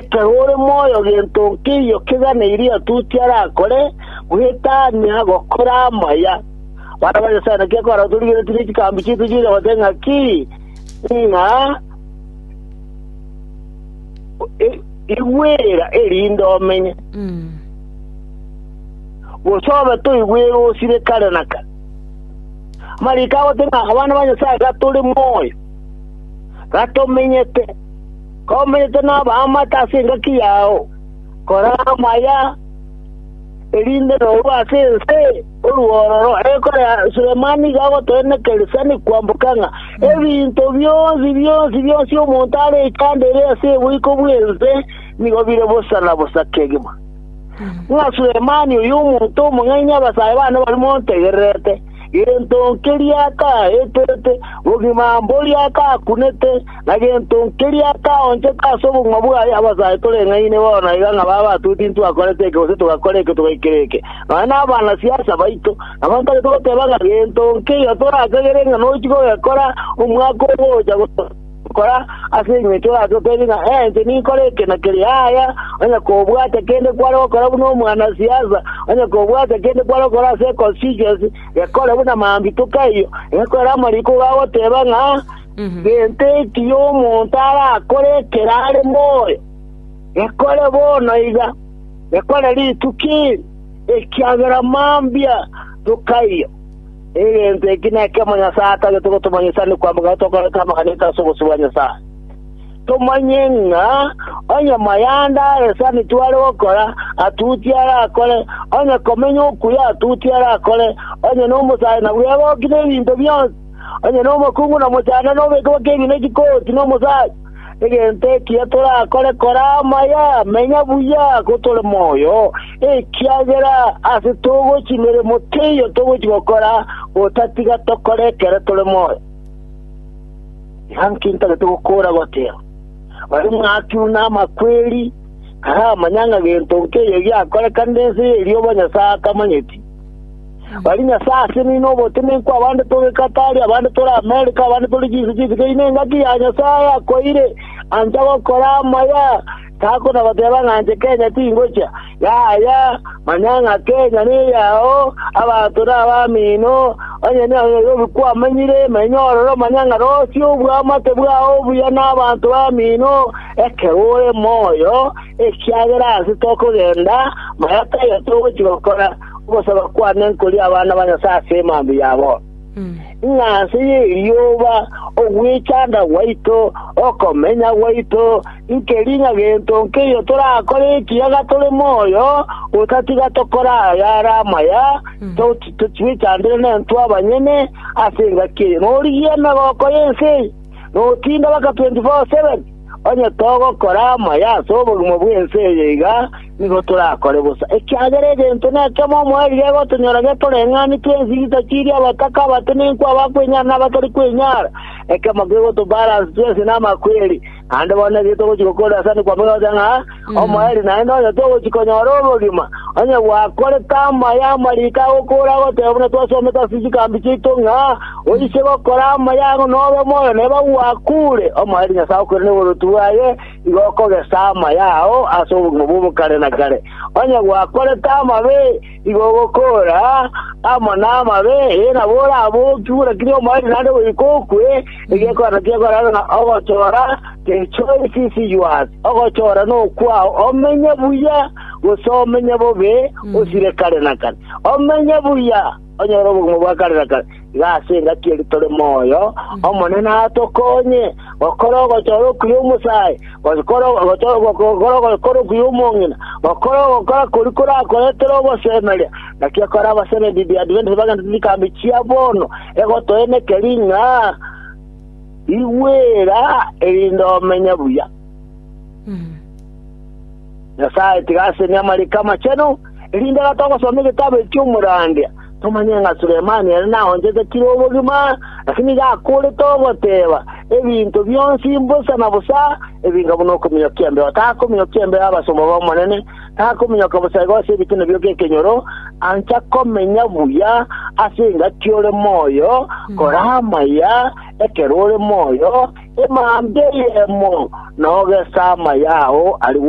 Ekero ore moyo gento nkeiyo keganeirie otuti arakore, gwetania gokora amaya. Barabwo Nyasae naki akoratorigeretie chikambi chiaito chiria goteba ng'aki, ng'a igwera erinde omenye, gose obe toigwere osire kare na kare. Amariko agoteba ng'a abana ba Nyasae gatore moyo, gatomenyete. Komenete nabaamate ase engaki yao, kora amaya, erinde norue ase ense orue ororo. Ekore Sulemani igo agoteneneka erisani kwamboka ng'a ebinto bionsi, bionsi, bionsi omonto are ekando ere ase oboiko bw'ense nigo bire bosa na bosa kegima, ng'a Sulemani oyo omonto omong'aini abasae bane barimo ontegererete. Gento nkeria kaetete, bogima mboria kakunete, na gento nkeria kaonchete ase obogima bwaye. Abasae toreng'aini bono iga ng'a baba batuti ntitwakorete eke gose togakora eke togaikera eke, nonya nabanasiasa baito. Nabo ntari kogoteba ng'a gento nkeria torakagere ng'a nochi kogekora omwaka ogocha, Kora ase engencho oratokerie ng'a enche ninkore eke na keria. Yaya, onye kobwate kende kware gokora buna omwanasiasa, onye kobwate kende kware gokora ase econstituency, gekore buna mambitoka eyio, egekorere amariko igo agoteba ng'a gento ekiya omonto arakore ekero are moyo, gekore bono iga, gekore rituko eri, ekiagera mambia toka eyio. Egento eki nekemo Nyasae atagete gotomanyisa ni kwamboka ng'a tokorete amaganyeto ase obosio bwa Nyasae. Tomanye ng'a onye mayanda aresani tware gokora, atuti arakore, onye komenya okuya, atuti arakore, onye nomosae na bwebo okine ebinto bionsi, onye nomokungu na mochando nobeke boke ebinto chikooti nomosae. Egento ekiya torakore kore amaya, menya buya gotore moyo, ekiagera ase togochia emeremo teiyo togochia gokora, otatiga tokore ekero tore moyo. Inki ntagete gokoora goteba? Onye mwakirwe namakweri, taramanya ng'a gento nkeiyo giakorekanire ense y'erioba Nyasae atamanyeti. Baria Nyasae ase nino obotenenku abande tore Katari, abande tore Amerika, abande tore chinse chinsi keino engaki ya Nyasae akoeire ancha gokora amaya tako na goteba ng'a anche Kenya tingocha yaya manya ng'a Kenya neyao abanto nabamino onye noyobi kwamenyire emenyo ororo manya ng'a rosie obwamate bwao obuya nabanto bamino ekero ore moyo ekiagera ase tokogenda maya taya togochi gokora Ogosaba kwane nkorie abana ba Nyasae ase emambe yabo, ng'a nse y'erioba ogwechanda gwaito, okomenya gwaito, nkeri ng'a gento nkeiyo torakore ekiagera tore moyo, otatiga tokore aya are amaya, twechandere nentwe abanyene ase engaki eye, na origie emegoko y'ense eye, na otinde baka 24:7. Onye togokora amaya ase obogima bw'ense eye iga, nigo torakore bosa, ekiagera egento nekemo omoerio egotonyora getoreng'ani twensi gitachirie abataka, abatenenkwa, abakwenyara, na abatari kwenyara, ekemo kegotobalance twensi namakweri. Naende bono naki togochia gokoorera sani kwamogete ng'a, Omoerio naende onye togochia konyora obogima, onye gwakorete amaya amariko agokora agoteba buna twasomete ase chigambi chiaito ng'a, Oise gokora amaya ang'o nobe moyo neba ogwakuure, omoerio Nyasae okoire noboruoti bwaye igo okogesa amaya ao ase obogima bw'obokare na kare. Onye gwakorete amabe, Igo ogokoora amo namabe, ee, nabo orabookigwe, buna kera omoerio naende goika okwe, egekorano ki'ekorero na ogochora kechore chisiyoas, ogochora nokwao, omenye buya, gose omenye bobe, osire kare na kare, omenye buya, onyore obogima bwa kare na kare. Iga ase engaki eri tore moyo, Omonene atokonye gokora ogochora okuya omosae, gokora ogochora gokora ogokora okuya omong'ina, gokora ogokora koria korakoretere ogosemeria. Naki ekore abaseneti The Adventist bagenderete chikambi chia bono, egotoeneka eri ng'a rigwera erinde omenye buya. Nyasae tiga asenie amariko amachenu. Erinde iga togosoma egetabu eki chiomorandia, tomanye ng'a Sulemani ere naonchete kire obogima, naki nigo akoorete ogoteeba, Ebinto bionsi mbosa na bosa, ebinga buna okominyoka embeo takominyokia embeo abasomba b'Omonene, takominyoka bosaega ase ebituna bio gekenyoro, ancha komenya buya ase engaki ore moyo, kora amaya ekero ore moyo, emambia eyemo, na ogese amaya ao arigwe.